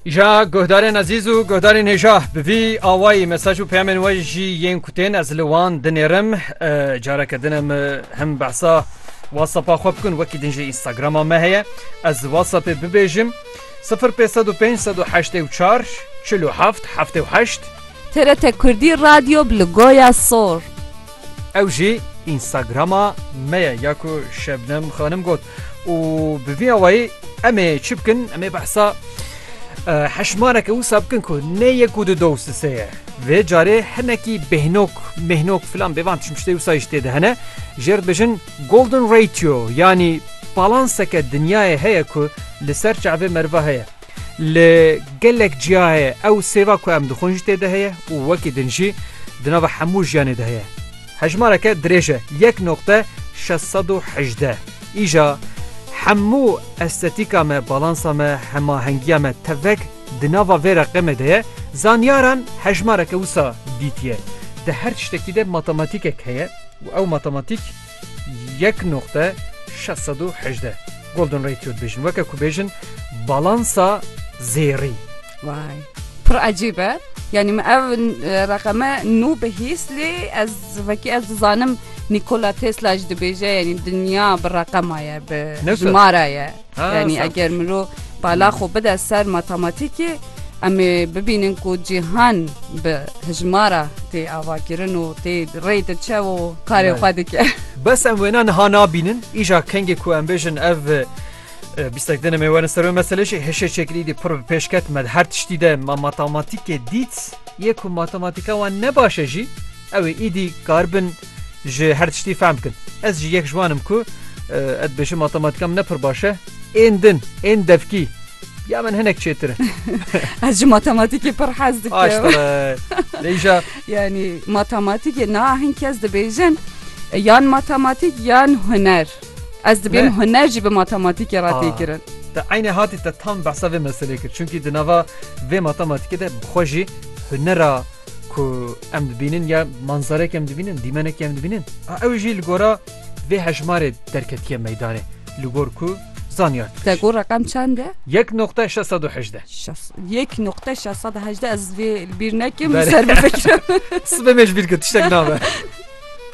Ja guhdarên ezîz û guhdarên hêja bi vî awayî mesaj û peyamên we jî yên ku tên ez li wan dinêrim careke din em him behsa WhatsAppa xwe bikin wekî din jî Instagrama me heye ez WhatsAppê bibêjim 0505844777 TRT Kurdî Radyo bi li Goya Sor. Ew jî Instagrama me ye ya ku Şebnem Xanim got. û bi vî awayî em ê çi bikin em ê behsa heşmareke wisa bikin ku ne yek û du dow sise ye vê carê hinekî bêhnok mêhnok filan bêvan çi tiştê wisa jî tê de hene jêr dibêjin golden ratio yanî balanseke dinyayê heye ku li ser çavê meriva heye Li gelek ciyayê ew sêva ku em dixwin jî tê de heye û wekî din jî di nava hemû jiyanê de heye. Hejmareke dirêj e, yek noqte şeş sed û hejdeh. Îja hemû estetîka me, balansa me, hemahengiya me tevek di nava vê reqemê de ye. Zanyaran hejmareke wisa dîtiye. Di her tiştekî de matematîkek heye û ew matematîk, Yek noqte şeş sed û hejdeh. Golden Ratio dibêjin. Weke ku bêjin balansa zêrî. Vay. Pir ecîb e. Yani me ev e, reqeme nû bihîst lê ez vekî ez dizanim Nikola Tesla ji dibêje yani dinya bi reqema ye bi Newsa. jimara ye. Yanî eger mirov bala xwe bide ser matematîkê em ê bibînin ku cîhan bi hijmara tê avakirin û tê rê diçe û karê xwe dike. Bes em wêna niha nabînin îja kengê ku em bêjin ev bîstek din em ê werin ser wê meselê jî hişê çêkirî dî pir bi pêş ket me her tiştî de me matematîkê dît yê ku matematîka wan ne baş e jî ew ê îdî kar bin ji her tiştî fehm bikin. Ez jî yek ji wan im ku ez dibêjim matematîka min ne pir baş e. Ên din, ên devkî ya min hinek çêtir e. Ez ji matematîkê pir hez dikim. Aştere. Lêja. Yanî matematîkê na hin kes dibêjin yan matematîk yan huner. Ez dibêm huner jî bi matematîkê re têkirin. Te eynê hatî te tam behsa vê meselê kir. Çunkî di nava vê matematîkê de bi xwe jî hunera ku em dibînin ya manzarek em dibînin dîmenek em dibînin ew jî li gora vê hejmarê derketiye meydanê li gor ku zanyar Te got reqem çend e? Yek noqte 618 Yek noqte 618 ez vê li bîr nekim ser bifikirim. Sibê me ji bîr kir tiştek nabe.